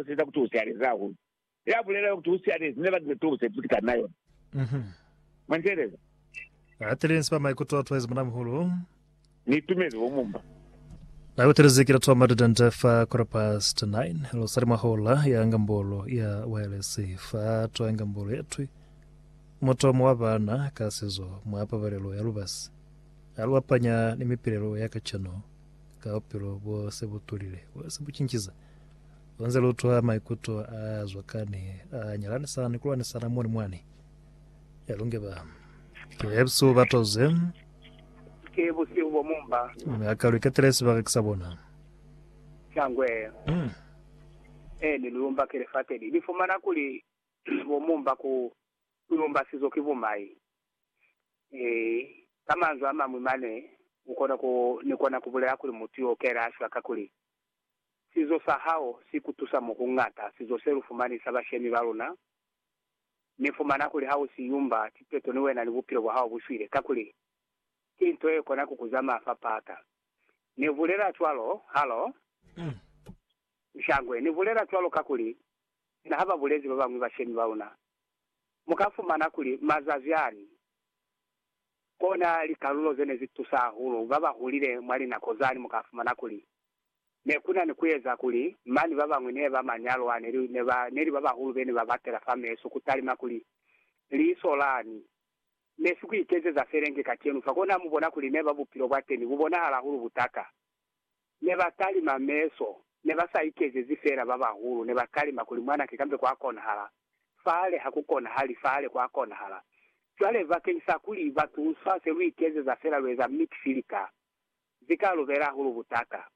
Seza kuti u sialeze hahulu. Ya bulelanga kuti u sialezi ne batile tubo se tuti kana yona. Mwa nteeleza. Ba tile nsi ba maikuto a tuwezi muna-muhulu. Ni itumezi bo mumba. Na kutelezi ki latu ba matitente fa quarter past nine. Lu sali mwa hola ya ngambolo ya waelesi. Fa twa ngambolo ye twi. Mutomo wa bana ka sizo mwa pabalelo ya lubasi. A lu apanya ni mipilelo ya kacenu ka bupilo bo se bu tulile, bo se bu cinciza. Lunze lutwa maikuto a zwakani a nyalanisana ni kulwanisana moni mwani. Ya lunge ba. Ke busihu ba toze. Ke busihu bo mumba. Mi a ka lu iketele sibaka kisa bona. Shangwe. Mm. E ni luyumba ke lifate li. Ni fumana kuli bo mumba ku luyumba sizo ki bumai. E, ka manzwi a mañwi mane, u kona ku, ni kona ku bulela kuli mutu yo kela ashwa kakuli Sizo sa hao si ku tusa mo ku ñata. Sizo se lu fumani sa bashemi ba luna, Ni fumana kuli ha u si yumba tipeto ni wena ni bupilo bwa hao bu shwile, kakuli ki nto ye kona ku ku zamaya fa pata. Ni bulela cwalo. Halo? Nshangwe, ni bulela cwalo kakuli sina ha ba bulezi ba bañwi bashemi ba luna, mu ka fumana kuli mazazi ani kona likalulo ze ne zi tusa hahulu ba ba hulile mwa linako zani mu ka fumana kuli Ne ku na ni ku eza kuli mani ba bañwi ne ba manyalwa ne li, ne ba, ne li ba bahulu be ne ba batela fa meso ku talima kuli, Liso lani! Ne si ku ikezeza felenge kacenu fa. Kona mu bona kuli ne ba bupilo bwa teni bu bonahala hahulu butata. Ne ba talima meso, ne ba sa ikezezi fela ba bahulu, ne ba talima kuli, Mwanake, kambe kwa konahala fale, ha ku konahali fale, kwa konahala. Cwale, bakeñisa kuli ba tunsa, se lu ikezeza fela, lu eza mix-filter. Ze ka lubela hahulu butaka.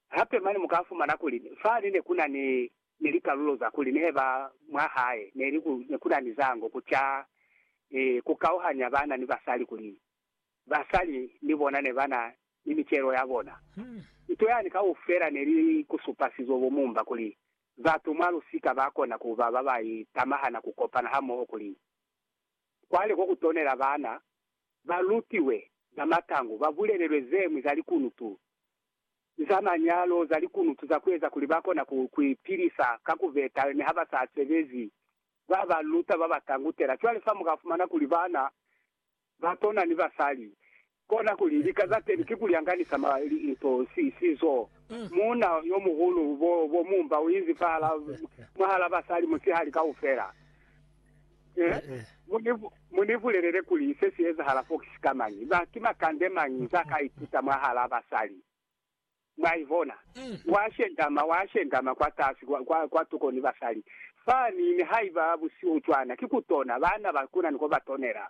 Hape mane mu ka fumana kuli fani ne ku na ni, ni likalulo za kuli nehe ba mwa hae ne li ku, ne ku na ni zango ku ca ni ku kauhanya bana ni basali kuli basali ni bona ne ba na ni micelo ya bona. Nto yani kaufela ne li ku supa sizo bo mumba kuli batu mwa lusika ba kona ku ba ba ba itamahana ku kopana hamoho kuli Cwale ko ku tonela bana ba lutiwe za matangu, ba bulelelwe ze ñwi za likunutu za manyalo, za likunutu za ku eza kuli ba kona ku, ku ipilisa ka ku beta ni ha ba sa sebezi, ba ba luta, ba ba tangutela. Cwale fa mu ka fumana kuli bana ba tona ni basali Kona kuli, lika za teni ki kulyanganisa ma, li, linto, si, sizo. Muuna yomuhulu bo, bo mumba uinzi fahala, mwahala basali musihali kaufela. Eh, mu ni, mu ni bulelele kuli se si ezahala fo ki sikamañi, ba, ki makande mañi za ka ituta mwahala basali. Mwa ibona? Wa shendama, wa shendama kwatasi, kwa, kwa, kwa tuko ni basali. Fani, nihaiba busihu cwana, ki kutona, baana ba kuna ni ko ba tonela.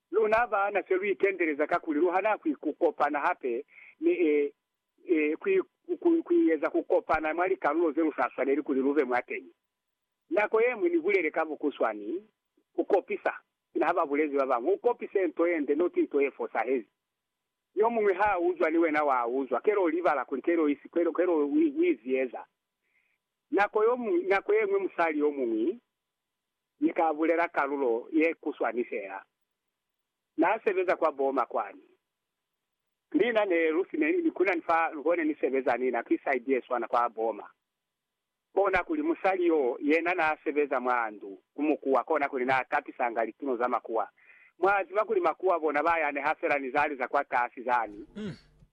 Luna baana se lu itendeleza kakuli lu hana ku kopana hape ni ku eza ku kopana mwa likalulo ze lu sa swaneli kuli lu be mwateñi. Nako ye ñwi ni bulele ka bukuswani, Ku kopisa, sina ha ba bulezi ba bañwi, u kopise nto ye nde, not nto ye fosahezi. Yo muñwi ha a uzwa ni wena wa uzwa, kele u libala kuli kele u izieza. Nako ye ñwi musali yo muñwi Ni ka bulela kalulo ye kuswani fela. Na sebeza kwa Boma kwani. Mina ne lu si ne ni kunani fa luko ne ni sebeza ni na ki side ye swana kwa Boma. Kona kuli musali yo yena na sebeza mwa ndu ku mukuwa kona kuli na tapisanga lituno za makuwa. Mwa ziba kuli makuwa bona ba yaneha fela ni zali za kwa kasi zani.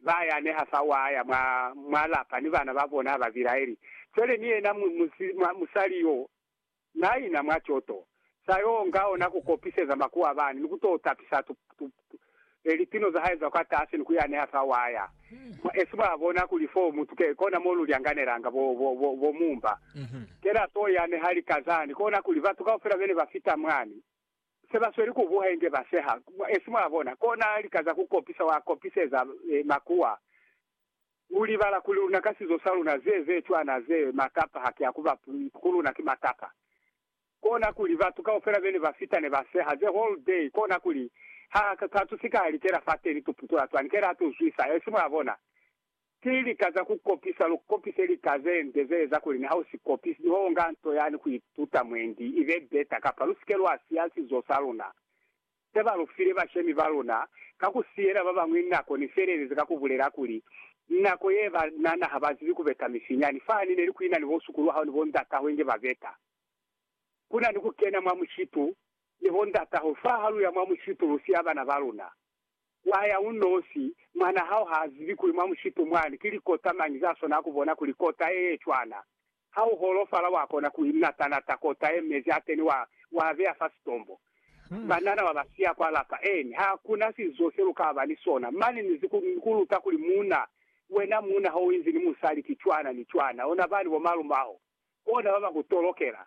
Ba yaneha fa wa ya mwa, mwa lapa ni bana ba bona ba bilaeli. Fele ni yena mu, mu, musali yo Na ina mwa coto, sa yo nga ona ku kopiseza makuwa bani, ni ku to tapisa tu, tu, tu, e, lipino za hae za kwa tasi ni ku ya neha fa waya. Mwa esi mwa bona kuli fo mutu ke kona mo lu lyanganelanga bo, bo, bo, bo mumba. Kena to ya neha lika zani, kona kuli batu kaufela bene ba fita mwani, se ba sweli ku buha inge ba seha. Mwa esi mwa bona, kona lika za ku kopisa, wa kopiseza, e, makuwa. Ku libala kuli luna ka sizo sa luna ze ze cwana ze matapa haki ya kuba ku luna ki matapa. Kona kuli batu kaufela bene ba fita ne ba seha the whole day kona kuli ha ka tu sika ya likela fateni tu putula cwani kela tu zwisa esi mwa bona ki lika za ku kopisa lu kopise lika ze nde ze eza kuli ni ha u si kopisi ni ho nga nto yani ku ituta mwendi ibe beta kapa lu sike lwa siya sizo sa luna ze ba lu file bashemi ba luna ka ku siyela ba bañwi nako ne felelezi ka ku bulela kuli, Nako ye ba nana ha ba zibi ku beta mifinyani. Fahani ne li ku ina ni bo sukulu wa hao ni bo ndat'aho inge ba beta. Ku na ni ku kena mwa mushitu ni bo ndat'aho. Fa ha lu ya mwa mushitu lu siya bana ba luna, wa ya u nosi. Mwan'a hao ha zibi kuli mwa mushitu mwani ki likota mañi za swanela ku bona kuli kota ye ye cwana Ha u holofala, wa kona ku inata-nata kota ye mezi a kene, wa, wa beya fa sitombo. Banana wa ba siya kwa lapa. Eeni, ha ku na sizo se lu ka ba ni sona. Mane ni ku, ni ku luta kuli, Muuna, wena muuna, ha u inzi ni musali, ki cwana ni cwana. Ona bani bo malumaho, bona ba ba ku tolokela.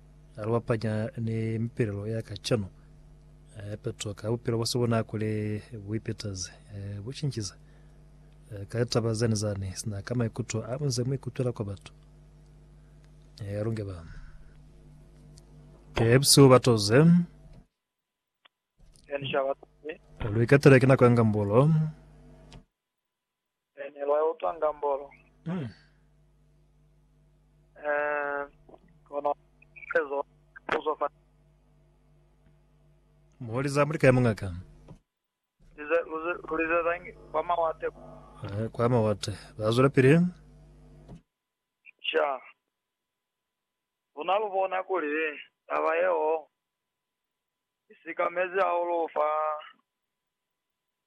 Ha lu bapanya ni mipelelo ya kacenu, hape tuka bupilo bwa subunakule bu ipetaze, bu cincize ka litaba zeni zani sina ka maikuto a bunze mu ikutwela kwa batu. Ha lu nge ba pepsi ba toze, lu ikatele ki nako ya ngambulo. Ene lwa utwa ngambolo. Kono ezo puzo fa. Moli za mulika ya mungaka. Lize, luze, lulize zangi kwa mawate. Eh, kwa mawate. Ba zwela pili. Sha. Una lubona kuli taba yeo isikamezi hahulu fa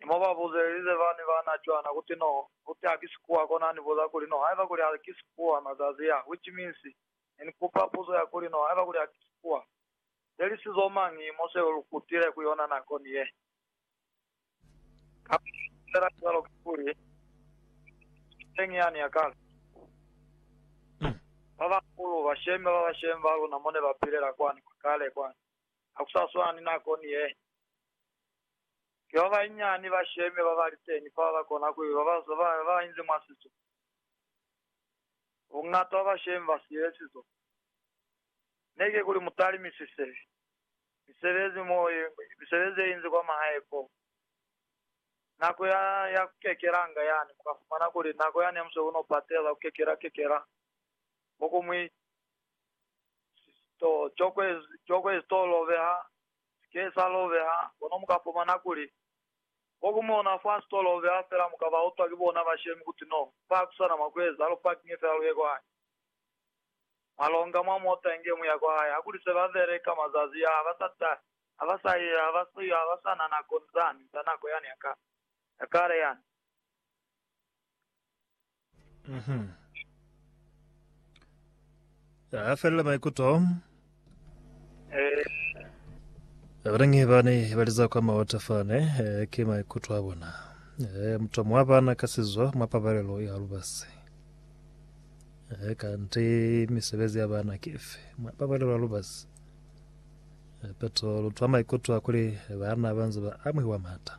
Ni mo ba buzelize bani ba na cwana kuti, No, uti ha ki sikuwa kona ni buza kuli, No, haiba kuli ha ki sikuwa, mazazi a, which means, ne ni kupa puzo ya kuli, No, haiba kuli ha ki sikuwa, there is zo mañi mo seo lu kutile ku yona nako ni ye? Kamba ni bulela cwalo ka kuli, Ni teñi yani ya kale. Ba bahulu, bashemi ba bashemi ba luna mo ne ba pilela kwani, kwa kale kwani, ha ku sa swana ni nako ni ye. Ki ba banyinyani ba sheme ba ba li teni fa ba kona ku ba ba, ba, ba ba inzi mwa sizo. Bungata bwa bashemi ba siile sizo. Ne ki kuli mu talimisise misebezi mo, misebezi ye inzi kwa mahae ko, nako ya, ya ku kekelanga yani, mu ka fumana kuli nako yani ya musebezi u no patela, ku kekela, kekela, mo ku mwi, to, cokwe, cokwe zitolo beha Sike sa lobeha, kono muka fumana kuli, ko ku mona fa sito lobeha fela muka ba utwa ki bona bashemi kuti no, fa hakusana mwa kueza, lu parkinge fela luye kwa hae. Mwa longa mwa mota inge muya kwa hae. Hakuli se ba beleka mazazi ya, haba sa ta, haba sa ye, haba sa yo, haba sa na nako, ni zani, za nako yani ya kale, ya kale yani. Mhm. Ya ya felela maikuto. Eh, Abanangi bane baliza kwa maota fane eh, ke maikuto a bona. Eh, mutwa mwa bana ka sizo mwa pabalelo ya lubasi. Eh, kanti misebezi ya bana ke efe mwa pabalelo ya lubasi. Eh, peto lutwa maikuto a kuli bana banze ba amuhiwa mata.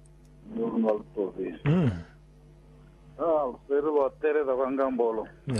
Ni lunwa lu tobile. Haa, lu se lu ba telela kwa ngambolo.